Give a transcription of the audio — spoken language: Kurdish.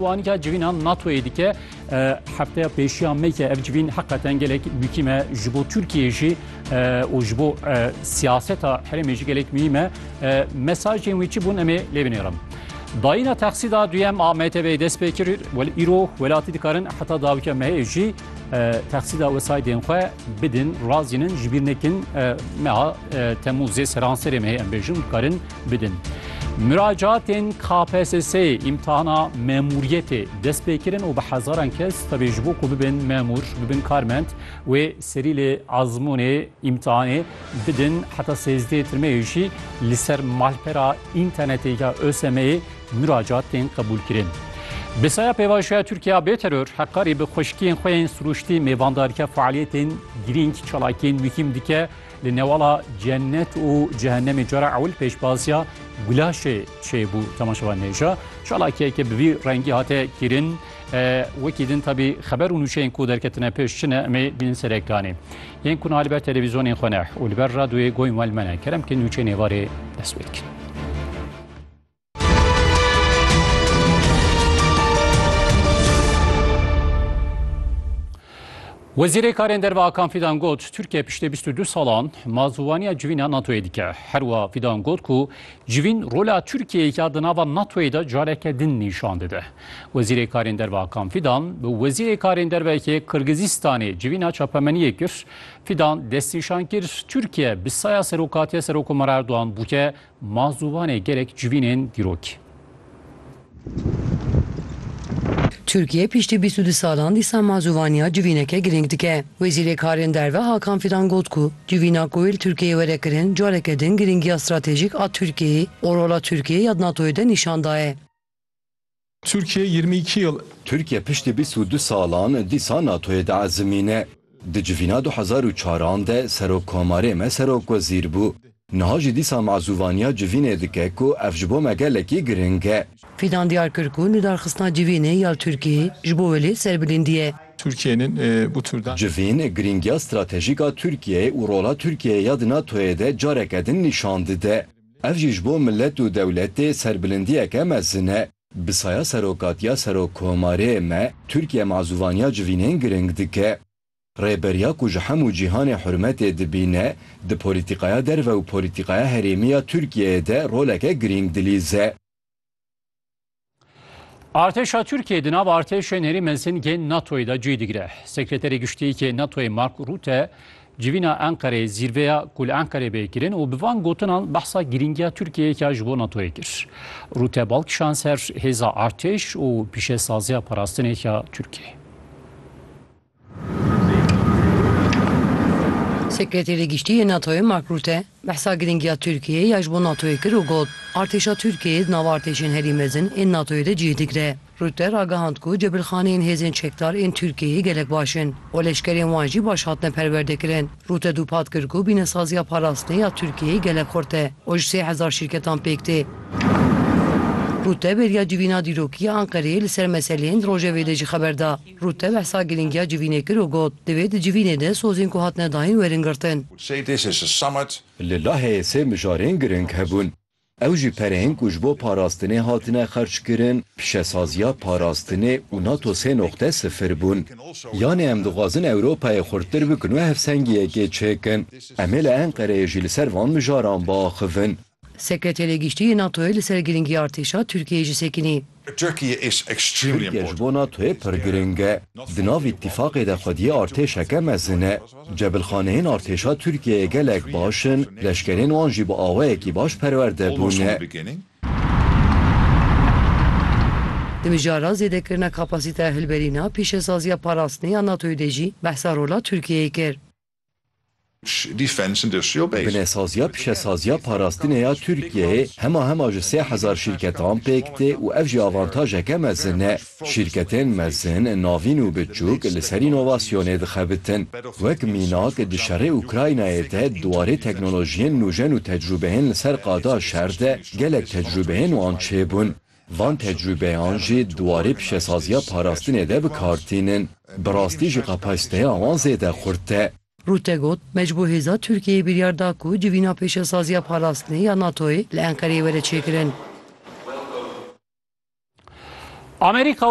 Wanika civîna NATO'yê dike hefteya pêşiya me ke ev civîn heqeten gelek mûkîm e ji bo Tirkiyeyê jî û ji bo siyaseta herêmê jî gelek mûhîm e. Mesajên wî çi bûn em ê lê binêrim. Dayîna texsîda duyem a MTB'ê dest pê kir welê îro welatî dikarin heta dawika mehê jî texsîda wesaydên xwe bidin, razînin, ji bîr nekin meha Temûzê seranserê mehê em bêjin dikarin bidin. Miracatên KPSS'ê îmtihana memûriyetê dest pê kirin û bi hezaran kes tevî ji bo ku bibin memûr, bibin karmend wê serî lê ezmûnê îmtihanê bidin heta sêzdehê tirmeyê jî li ser malpera înternetê ya ÖSM'ê miracat tên qebûlkirin. Bi saya pêvajoya Tirkiya bê teror heqarî bi xweşikiyên xwe yên sirûştî mêvandarike faaliyetên girîng çalakiyên muhîm dike Li newala cennet û cehennemê cara ewil pêşbaziya gulaşê çêbû temaşevan hêja. Çalakiyeke bi vî rengî hate kîrin. Wekî din tabî xeber û nûçeyên ku derketine pêş çi ne emê bînin ser ekranê. Yên ku niha li ber televîzyonên xwe ne û li ber radyoyê goyên wan li me ne kerem kin nûçeyên êvarê dest pê dikin. Wezîrê Karên Derve Akan Fidan got, Tirkiye piştê bîst û du salan mazûwaniya civîna NATO'yê dike. Her wiha Fidan got ku civîn rola Tirkiyeyê ya di nava NATO'yê de careke din nîşan dide. Wezîrê Karên Derve Akan Fidan bi Wezîrê Karên Derveyê Qirgizîstanê civîna çapemeniyê kir. Fidan destnîşan kir, Tirkiye bi saya serokatiya Serokomara Erdogan bûke Ma zûvanê gelek civînên dîrokî. Tirkiye piştî bîst û du salan dîsa ma zûvaniya civîneke girîng dike. Wezîrê Karên Derve Hakan Fidan got ku civîna ku wê li Tirkiyeyê were kirin careke din girîngiya stratejîk a Tirkiyeyê û rola Tirkiyeyê ya di NATOyê de nîşan daye. Tirkiye yirmi îki yil. Tirkiye piştî bîst û du salan dîsa NATO'yê diezimîne. Di civîna du hezar û çar an de serokkomarê me serokwezîr bû. Niha jî dîsa mazûvaniya civînê dike ku ev ji bo me gelekî giring e. Fidan diyar kir ku nûdarxistina civînê ya li Tirkiyeyê ji bo wê lê serbilindî ye. Civîn girîngiya stratejîk a Tirkiyeyê û rola Tirkiyeyê ya di NATO'yê de careke din nîşan dide. Ev jî ji bo milet û dewletê serbilindiyeke mezin e. Bi saya serokatiya Serokkomarê me, Tirkiye mazûvaniya civînên giring dike. Rêberiya ku ji hemû cîhanê hurmetê dibîne, di polîtîkaya derve û polîtîkaya herêmî ya Tirkiyeyê de roleke giring dilîze. Artêşa Tirkiye di nav artêşên herî mezin yên NATOyê de cî digire. Sekreterê Giştiyekê NATOyê Mark Rutte civîna Enqereyê zîrveya ku li Enqerê bê kirin û bi van gotinan behsa girîngiya Tirkiyeyeke ji bo NATOyê kir. Rutte bal kişan ser hêza artêş û pîşesaziya parastinê ya Tirkiyeyê. Sekreterê Giştî yê NATO'yê Mark Rutte behsa girîngiya Tirkiyeyê ya ji bo NATO'yê kir û got, Artêşa Tirkiyeyê di nav artêşên herî mezin ên NATO'yê de cih digire. Rutte ragihand ku cebilxaneyên hêzên çekdar ên Tirkiyeyê gelek baş in û leşkerên wan jî baş hatine perwerdekirin. Rutte dûpat kir ku bînesaziya parastinê ya Tirkiyeyê gelek xurt e û ji sê hezar şîrketan pêk tê. Rutte bêriya civîna dîrokî ya Enqereyê li ser meseleyên di rojevê de jî xeber da. Rûte behsa girîngiya civînê kir û got, Divê di civînê de sozên ku hatine dayîn werin girtin. Li Laheyê sê mijarên girîng hebûn. Ew jî pereyên ku ji bo parastinê hatine xerckirin, pîşesaziya parastinê û nato sê noqte sifir bûn. Yanê em dixwazin Ewropayê xurttir bikin û hevsengiyekê çêkin. Em ê li Enqereyê jî li ser van mijaran biaxivin. Sekreterê Giştî yê NATO'yê li ser girîngî artêşa Tirkiyeyê jî sekinî. Tirkiye ji bo NATO'yê pir girîng e. Di nav îtîfaqê de xwediyê artêşeke mezin e. Cebilxaneyên artêşa Tirkiyeyê gelek baş in, leşkerên wan jî bi awayekî baş perwerde bûne. Di mijara zêdekirina kapasîteya hilberîna pîşesaziya parastinê ya NATO'yê de jî behsa rola Tirkiyeyê kir. Binesaziya pişesaziya parastinê ya Tirkiyeyê hema hema ji sê hezar şîrketan pêk tê û ev jî avantajeke mezin e. Şîrketên mezin, navîn û biçûk li ser înovasyonê dixebitin. Wek mînak di şerê Ukraynayê de di warê teknolojiyên nûjen û tecrûbeyên li ser qada şer de gelek tecrûbeyên wan çêbûn. Van tecrûbeyan jî di warê pişesaziya parastinê de bi kar tînin. Bi rastî jî kapasîteya wan zêde xurt e. Rutte got, Me ji bo hêza Tirkiyeyê biryar da ku civîna pêşesaziya parastinê ya NATO'yê li Enqereyê were çêkirin. Amerîka û